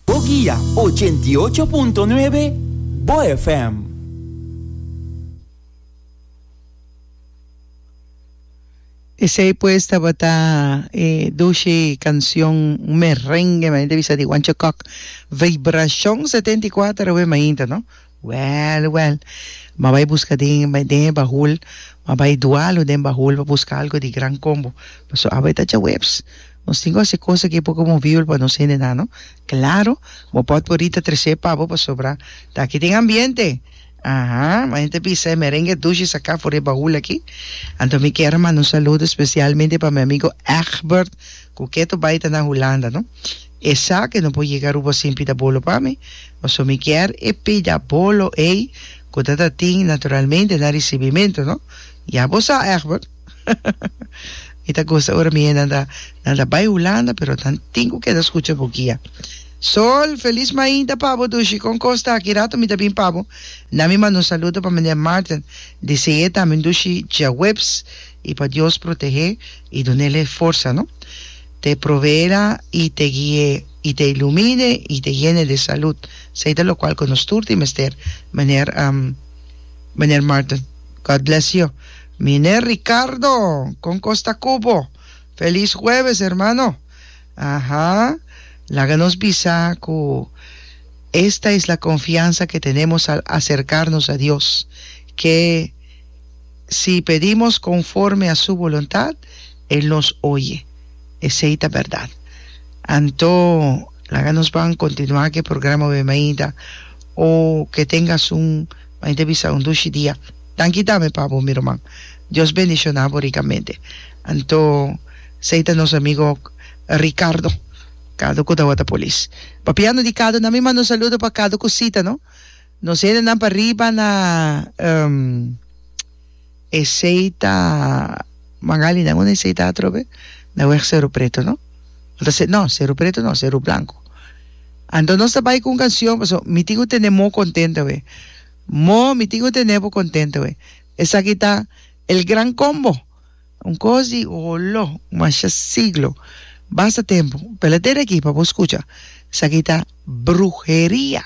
Bo guia ochenta i ocho punto nuebe Bo FM. Esey pues tabata e dushi cancion, un merengue mainta bisa di Juancho Cock, Vibracion setenta i kuater awe mainta no. Wèl, wèl. M'a bai buska den e den e bahul, m'a bai dua lo den bahul pa buska algu di gran kombo. Paso aba e ta djaweps. Nos tin ku hasi kosa ku e poko movible pa nos hende nan, no? Klaro, bo pot por rita tres'é pa bo pasobra ta aki tin ambiente. Aha, m'a hende ta bisa e merengue dushi saka for e bahul aki. Anto mi kier a manda un saludo spesialmente pa mi amigo Egbert ku keto bai ta na Hulanda, no? Esaki no por yega Aruba sin pida bolo pa mi, paso mi kier e pida bolo ey cu ta ta tin naturalmente na ricibimento no, ya bo sa Egbert. Mi ta gusta ora mi hennan ta nan ta bay Hulanda pero nan tin cu keda scucha bo guia. Sol, feliz mainta pa bo Dushi, con cos ta aki rato mi ta bin pa bo, na mi manda un saludo pa meneer Marten, dese'e tambe Dushi djaweps y pa Dios protege y dunele forsa no. te provera y te guie y te ilumine y te yene de salud, esey ta locual cu nos tur tin mester Meneer Meneer Martin God bless you Meneer Ricardo con cos ta cu bo Feliz Jueves hermano aha laga nos bisa cu esta es la confianza que tenemos al acercarnos a Dios que Si pedimos conforme a su boluntad, el nos oye. Esey ta berdad. Anto, laga nos ban continua cu e programa Oye Mainta, o cu e Tenga Asun, Mainta bisa un dushi dia. Danki tambe pa bo, mi ruman. Dios bendiciona bo ricamente. Anto, esey ta nos amigo Ricardo, Cado cu tawata polis. Papiando di Cado, nan mi manda un saludo pa Cado cu Sita, no? Nos hende nan pa riba na um esey ta Magali nan una esey ta atrobe na weg Seru Preto no o ta no Seru Preto no Seru Blanco anto nos ta bay cu un cancion pasobra mi tin cu tene mo contento awe mo mi tin cu tene bo contento awe esaki ta El Gran Combo un cos di olo masha siglo basta tempo pela dere aki pa bo scucha esaki ta bruheria.